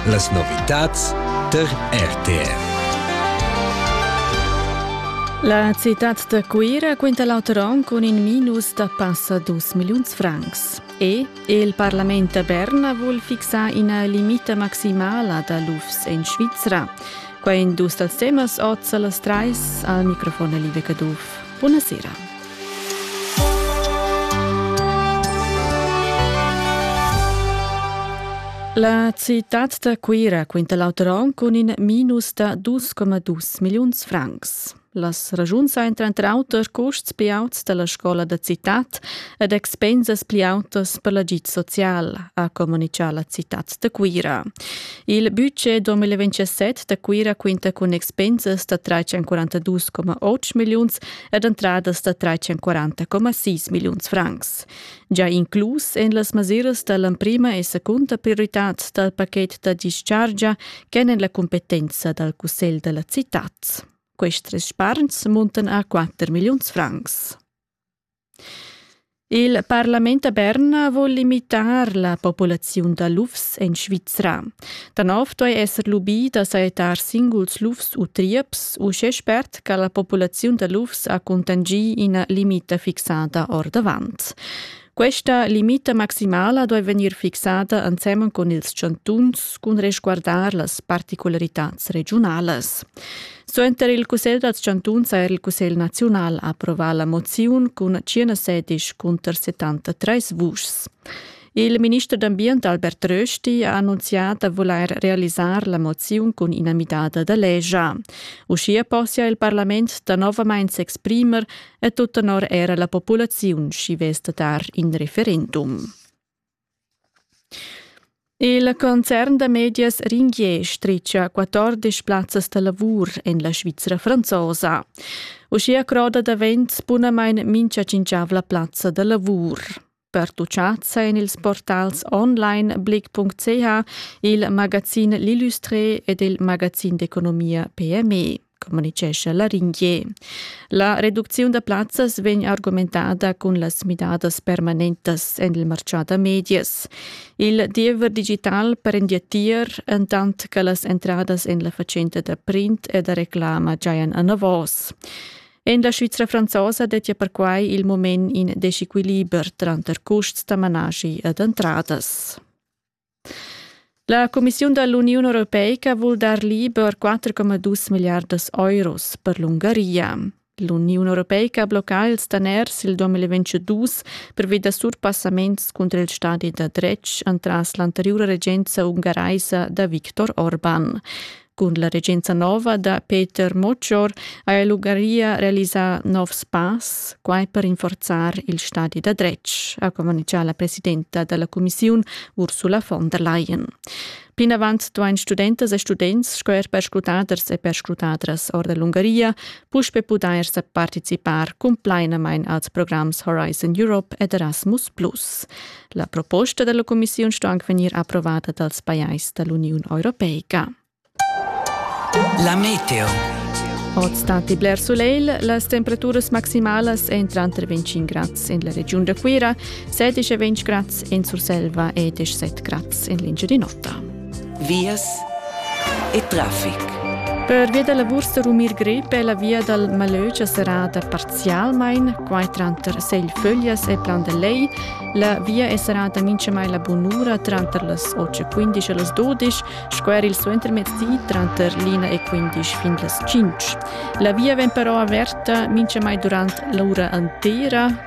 Las novitads tar RTR. La citad da Cuira quinta l'auter on cun in minus da passa dus milliuns francs. E il Parlament da Berna vul fixar ina limita maximala da lufs en Svizra. Quai en dus dals temas oz a las trais al microfon Live Caduff. Buonasera. La citad da Cuira quinta l'auter onn cun in minus da 2,2 milliuns francs. Las ragiuns ein tranter auter custs pli auts dalla scola da citad ed expensas pli autas per l'agid social, ha communicau la citad da Cuira. Il budget 2027 da Cuira quinta cun expensas da 342,8 milliuns ed entradas da 340,6 milliuns francs. Già inclus en las mesiras da l'emprima e secunda prioritad dal pachet da dischargia ch'èn en la cumpetenza dal Cussegl da la citad. Questi sparns muntan a 4 milliuns francs. Il parlament da Berna vul limitar la populaziun da lufs en Svizra. Da nov duai esser lubì da sajettar singuls lufs u trieps uschè spert che la populaziun da lufs ha cuntanschì ina limita fixada ordavant. Questa limita maximala duai vegnir fixada ensemen cun ils chantuns cun resguardar las particularitads regiunalas. Suenter il cussegl dals chantuns ha er il cussegl naziunal approvà la moziun cun 116 cunter 73 vuschs. Il minister d'ambient Albert Rösti ha annunzià da vulair realisar la moziun cun ina midada da legia. Uschia possia il parlament danovamain s'exprimer e tut tenor era la populaziun, sch'i vess da dar in referendum. Il concern da medias Ringier stritga quatordisch plazzas da lavur en la Svizra franzosa. Uschia croda davent bunamain mincha cinquavla plazza da lavur. Pertuchatsa en ils portals onlineblick.ch, il magazin L'Illustré ed il magazin d'economia PME. communitgescha Laringier. La reducziun da plazzas vegn argumentada cun las midadas permanentas en il martgà da medias. Il diever digital prendia tier, entant che las entradas en la fatschenta da print e da reclama giajan anavos. En la Svizra franzosa dettia perquai il moment in desequiliber tranter custs da manaschi ed entradas. La cumissiun da l'Uniun europeica vul dar liber 4,2 milliardas euros per l'Ungaria. L'Uniun europeica blocca ils daners il 2022 pervi da surpassaments cunter il stadi da dretg entras l'anteriura regenza ungaraisa da Viktor Orban. Cun la regenza nova da Peter Moccior ha el Ungaria realisà novs pass, quai per rinforzar il stadi da dretg, ha communitgà la presidenta da la cumissiun Ursula von der Leyen. Plinavant duain studentas e students sco er perscrutaders e perscrutadras ord l'Ungaria puspe pudair sa participar cumplainamain als programs Horizon Europe ed Erasmus+. La proposta dalla commissiun sto anc vegnir approvata dals pajais dall'Uniun Europeica. La meteo. Oz stati bler soleil, las temperaturas maximalas èn tranter 25 grads en la regiun da Cuira, 16 e 20 grads en Surselva e 17 grads en l'Engiadin'Ota. vias e traffic. Pervia da la bursa rumir grep è la via dal Malögia serrada parzialmain, quai tranter Seglföglias e Plan da Lei. La via è serrada minchamai la bunura tranter las 8.15 e las 12, sco er il suentermezdi tranter l'ina e 15 fin las 5. La via vegn però averta minchamai durant l'ura intera,